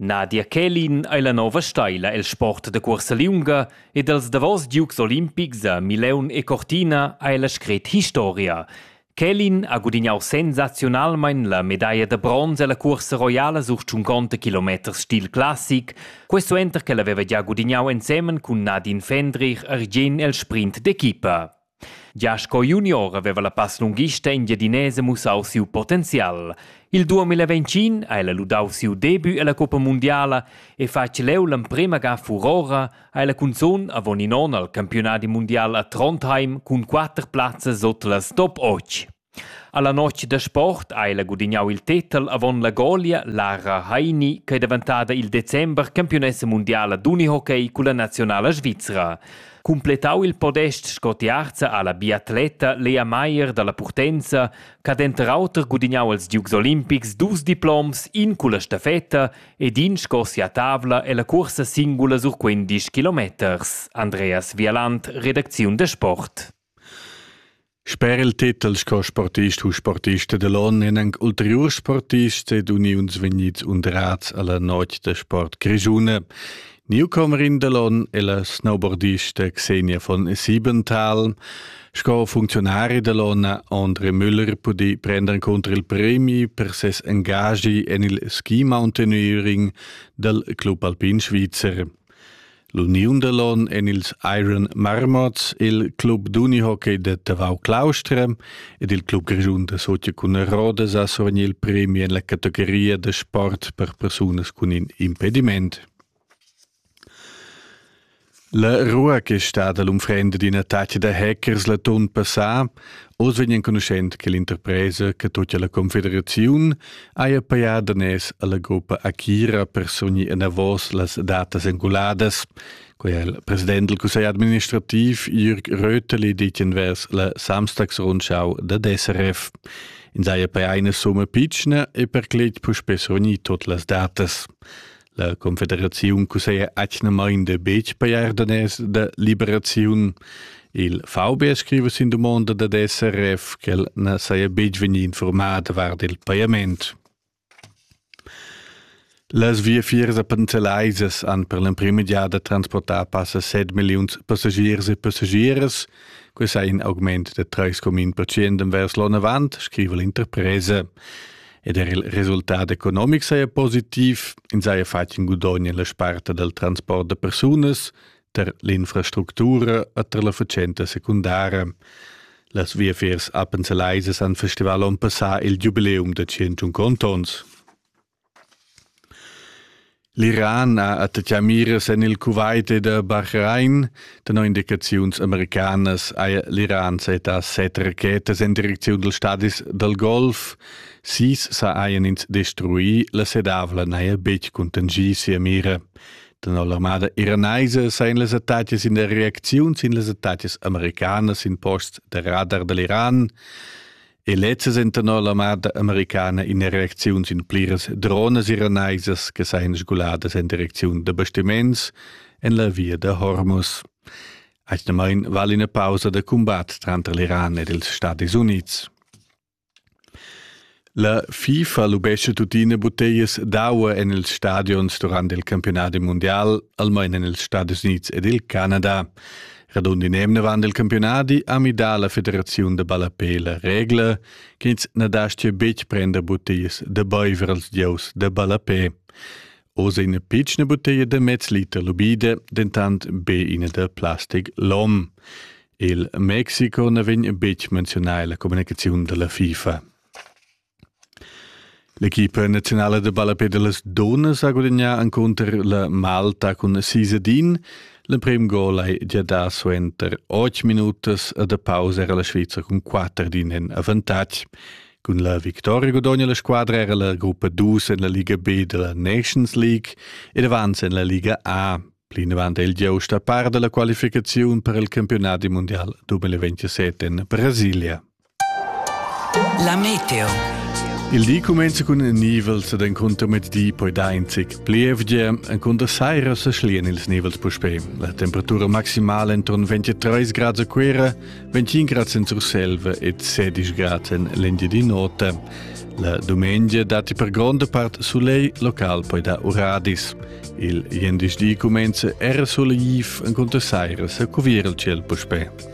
Nadia Kälin ei la nova steila el sport da cuorsa liunga ed els davos giugs olimpics a Mileun e Cortina ei la scret historia. Kälin ha gudignau sensaziunalmein la medaglia da bronz ella cuorsa roiala sur 50 km stil classic, questo enter che el haveva gia gudignau ensemen cun Nadine Fendrich ergien el sprint d'equipa. Gia sco junior haveva la passlunghista engiadinesa mussau siu potenzial. Il 2025 ha ella ludau siu debut ella coppa mundiala e fatg leu l'emprema ga furora ha ella cunzun avon in onn al campiunadi mundial a Trondheim cun quater plazzas sut las top 8. Alla notg da sport ha ella gudignau il tetel avon la golia Lara Heini ch'ei daventada il december campiunessa mundiala d'unihockey culla naziunala svizra. Cumpletau il podest sco tiarza ha la biatleta Lea Meier dalla Purtenza ch'ha denter auter gudignau als Dukes olimpics dus diploms, in culla stafetta ed in sco sia tavla ella cuorsa singula sur quindisch kilometers. Andreas Vialand, redacziun da sport. Sper il titel sco sportist u sportista da l'onn èn anc ulteriurs sportists ed uniuns vegnids undrads a la notg da sport grischuna. Newcomerin da l'onn è la snowboardista Xenia von Siebenthal. Sco funcziunari da l'onn ha André Müller pudì prender cunter il premi per ses engagi en il ski mountaineering dal Club Alpin Svizzer. L'uniun da l'on en ils Iron Marmots, il club d'unihockey da Tavau Claustra ed il club grischun da Socia cun Rodas ha survegni il premi en la categoria da sport per persunas cun in impediment. La rua che è stata l'unfrenda d'ina taccia da hackers la ton passà Oz vegn enconuschent che l'interpresa che tocca la confederaziun haja pajà daners alla gruppa Akira per sogni enavos las datas enguladas. Quei ha il president del Cussegl administrativ Jürg Röteli ditgen vers la Samstagsrundschau da DSRF. In saja per eine Summe pitschna e per clet puspé sogni tot las datas. La confederaziun cusseglia atgnamain da betg pajar daners da liberaziun. Il VB scriva sin dumonda dad SRF ch'el na saja betg vegnì informaà davart il pajament. Las viafiers a Panzelaisas han per l'emprima giada transportà passa 7 milliuns passagiers e passagieras. Quest è in augment da 3,1% envers l'onn avant, scriva l'interpresa. ed er il resultat economic saja positiv, ins saja fatg in gudogn en la sparta dal transport da persunas, tar l'infrastructura e tar la fatschenta secundara. Las viafiers appenselaisas han festival onn passà il giubileum da 101 ontons. L'Iran ha attaccà miras en il Kuwait ed a Bahrain. Tenor indicaziuns americanas haja l'Iran setà set rachetas en direcziun dals stadis dal Golf. Sis sajan ins destruì. La sedavla n'haja betg contingì sia mira. Tenor l'armada iranaisa sajan las attacas in reacziun sin las attacas americanas sin posts da radar da l'Iran. E lezzas entanor l'armada americana in reacziuns in pliras dronas iranaisas che sajan sguladas en direcziun da bastiments en la via da Hormuz. Actualmain vale una pausa da combat tranter l'Iran ed els Stati Units. La FIFA lubesce tuttina bottellas d'aua en ils stadions durant il campionat mundial, almain en els Stati Units ed il Canada. Radund in emnevan del campionadi ha midà la federaziun de ballapé la regla, che ins na dastia betg prender buttiglias de baiver als gieus de ballapé. Oz è ina pitschna buttiglia de mez liter lubide, dentant be ina de plastic lom. Il Mexico na vegn betg menzionà la comunicaziun della FIFA. L'equipa naziunala da ballapé da las dunnas ha gudagnà encunter la Malta cun sis ad in. L'emprim gol hai gia dà suenter otg minutas e da pausa era la Svizra cun quatter ad in en avantatg. Cun la victoria gudogna la squadra era la gruppa dus en la Liga B da la Nations League ed avanza en la Liga A. Plinavant è il giust a par da la qualificaziun per il campionat mundial 2027 en Brasilia. La meteo. Il di cumenza cun nivels ed encunter mezdi poi dar in zic plievgia. Encunter saira se schlien ils nivels puspè. La temperatura maximale entron 23 grad a Cuera, 25 grad in Surselva e 16 grad en l'India di notte. La domenica dati per gronda part soleil local poi da uradis. Il jendisch di cumenza era soleiv, encunter saira se cuvier il ciel puspè.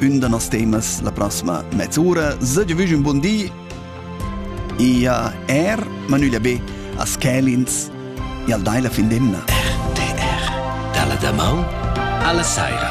ün da nos temas la prossima mezz'ura. Sage vüsch un bun di e a er Manülia B a Schelins e al dai la fin d'emna. RTR, dalla damaun alla saira.